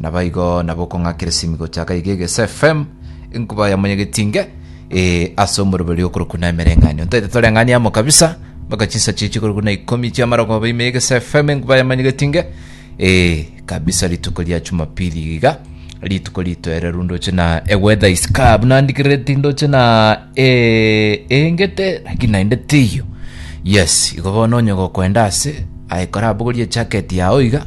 Naboigo nabokong'akereria simi gochaka iga egese FM enkuba ya monyegetinge eh, ase omoroberi okorwa kuna emereng'anio ntaite toreng'ani amo kabisa mpaka chinsa chichi korwa kuna ikomi chia marogoba ime egese FM enkuba ya monyegetinge eh, kabisa rituko ria Jumapili iga rituko rito ere rundoche na e weather is club nandikereti ndoche na eh, engete lakini naende tiyo yes igo bono onye gokwenda ase aye korabogorie jacket yao iga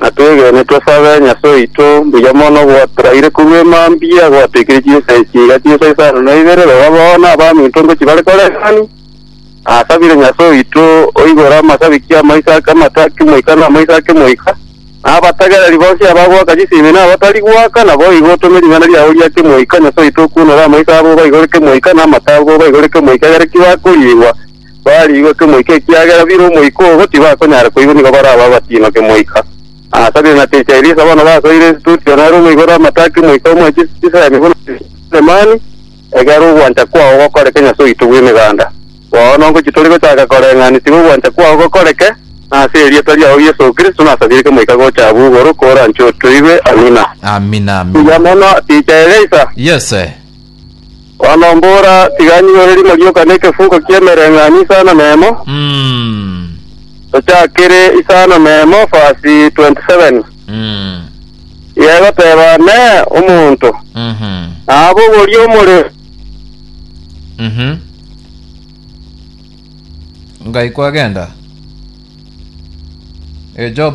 Na twegene tosabe Nyasae oito mbuya mono gwatoraire korwa emambia, gwatekirie chinsa echi iga chinsa isano na ibere, rora bono abaminto ngochia bare koreng'ani. Nasabire Nyasae oito oigore amasabiki amaiso ake amato ake moika na amaiso ake moika, na abatagereri bonsi abagoaka chisimi na abatari goaka, na boigo otome ring'ana riao riake moika, Nyasae oito okuonore amaiso abo baigoreke moika, na amato abo baigoreke moika egere ki bakoriigwa. bariigwe kemoika, ekiagera bire omoika obo tibakonyara koigwa nigo barabe abatino kemoika. Asa ninateche Elisa bono basoire esitutio nere omoigore amato a kemoika omo echi chisemi buna Sulemani, egere ogwancha kwao gokoreke Nyasae oito bw'emeganda. Bono ngochi tore gochaka koreng'ani tiga ogwancha kwao gokoreke, na ase erieta riao Yeso Kristo nasabire kemoika gocha abwo igoro koranche otoigwe. Amina. Amina, Buya amina. mono, Teacher Elisa. Yes, eh. Bono mbora, tiga nyigore rimo rioka nekefuko ki'emereng'anio isano nemo, Mm. tochakire isano nemo verse 27. Mm. Tiga egoteba Neye omonto, Mhm. nabogorie omorero. Mhm. Ngai kwagenda. Eh, Job.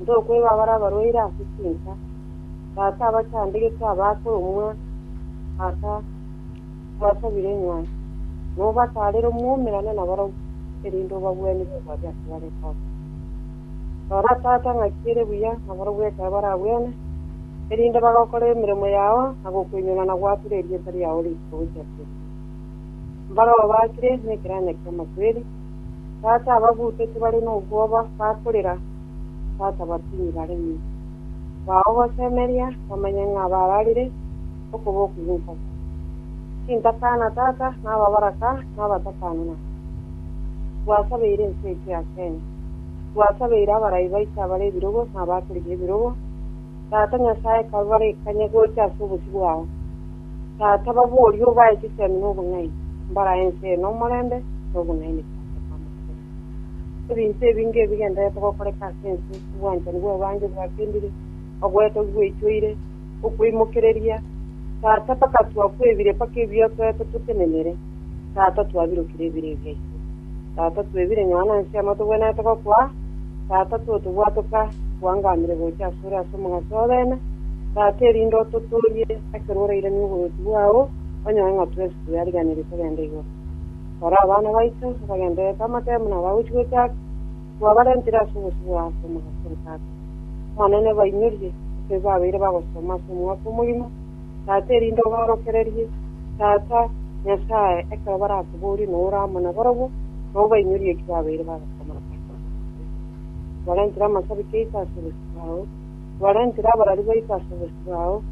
Ntokwegwa abare abarwaire ase chinsa, Tata abachandegete abaakwe omwa Tata obasabire inyae, nobataarere omwoumerane nabarabwo, erinde obagwenerere obwabe ase bare Tata. Rora, Tata, ng'aki ere buya nabarabwo ekero baragwene, erinde bagokora emeremo yao na gokwenyora na goatora erieta riao riiche gochia tene. Mbarao baakire nekeranya ki'amakweri, Tata ababuteti bare nobwoba bakorera, Tata batini baremie. Bao gosemeria bamanye ng'a bararire okoboko gwenkoko. Tintakana Tata nababaraka nabatakane nao. Gwasabeire ense eke yakeene. Gwasabeire abarai baito abare ebirogo na abakorigia ebirogo, Tata Nyasae kabarekanye gocha ase obosio bwao. Tata, baborie obae chisemi na obong'aini, mbarae ense eye nomorembe na obong'aini goeta kw'amakoro. Ebinto ebi ngebigendererete gokoreka ase ense, obwanchani bw'ebange bwakendire, ogoeta gweichoire, okweimokereria, Tata, mpaka twakwebire, mpaka ebiotwete totenenere. Tata, twabirokire ebibe biaito. Tata, twebire nyuma nansi amo togwenerete gokwa. Tata, totobwatoka, twangamire gocha asore ase omogaso obeene. Tata, erinde ototoorie ekero orairanie oboruoti bwao, onyore ng'a twensi twariganirie togende igoro. Tore abana baito, abagendererete amatebe buna abagochi gochaka, twabarentire ase obosio bwao ase omogaso one, Tata. Omonene, bainyorie, ekero babeire bagosoma ase omwaka omogima, Tata, erinde obaorokererie, Tata, Nyasae, ekero barakoborie nao ore amo nabarabwo, na obainyorie eki babeire bagakora ase obosio. Twarentire amasabiki aito ase obosio bwao, twarentire abarari baito ase obosio bwao,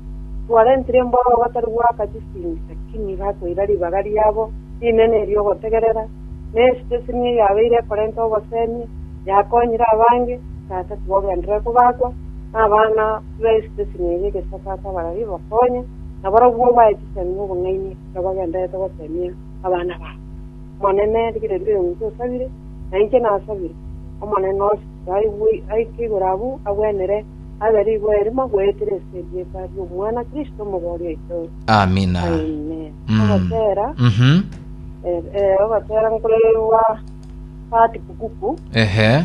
twarentire embororo batari goaka chisindi, lakini bakoira ribaga riabo rinene eriogotegerera, na esiteseni eyabeire ekorenta obosemi yakonyire abange, Tata, tibogenderere kobakwa, na abana Tiga Yeso chesini eria egesoka ase abarabwo ebakonye, na barabwo bae chisemi nobong'aini ekero bagendererete gosemia abana babo. Omonene, rigireria oyo ng'iti osabire, na inche nasabire. Omonene o chitugwa aigwe, aike igoro abwo, agwenere, abe rigwa erimo agoetera ase erieta ri'omwana Kristo omobori oito. Amina. Amen. Mm. Ogotera, Mhm. eh, eh, ogotera nkoreirwa Pat Bukuku. Ehe.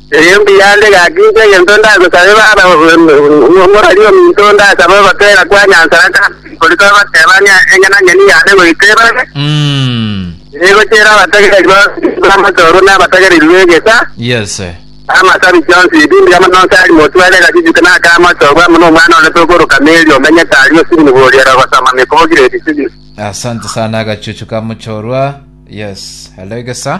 Erio mbuya nde gaki inche egento ndagosabe Baba, morari ominto ndasabe ogotwera kwa Nyansara Gati kori tobatebania engenang'eni yane goika ebabe, Mm. egochera abategereri bonsi b'amatorwa na abategereri b'egesa, Yes. na amasabi chionsi ebi mbuya mono nse ari motware egachijute na aka amatorwa amo nomwana onde tokoroka Mary omenyete aria Osibini boriere ogosoma mekobogire ebisibini. Asante sana agachuchu ka mochorwa. Yes. Hello egesa.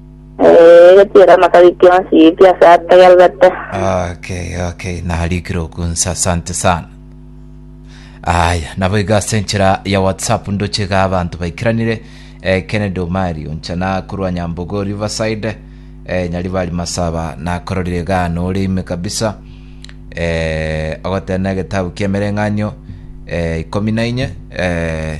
Eh, gatiera amakari kionsi pi ase ategererete. Okay, okay, narikire okunsa, asante sana. Aya, nabo iga ase enchera ya WhatsApp ndoche iga abanto baikiranire eh, Kennedy Omari oncha nakorwa Nyambogo Riverside eh, Nyaribari Masaba nakororire iga nore ime kabisa eh, ogotena egetabu ki'emereng'anio eh, ikomi na inye eh,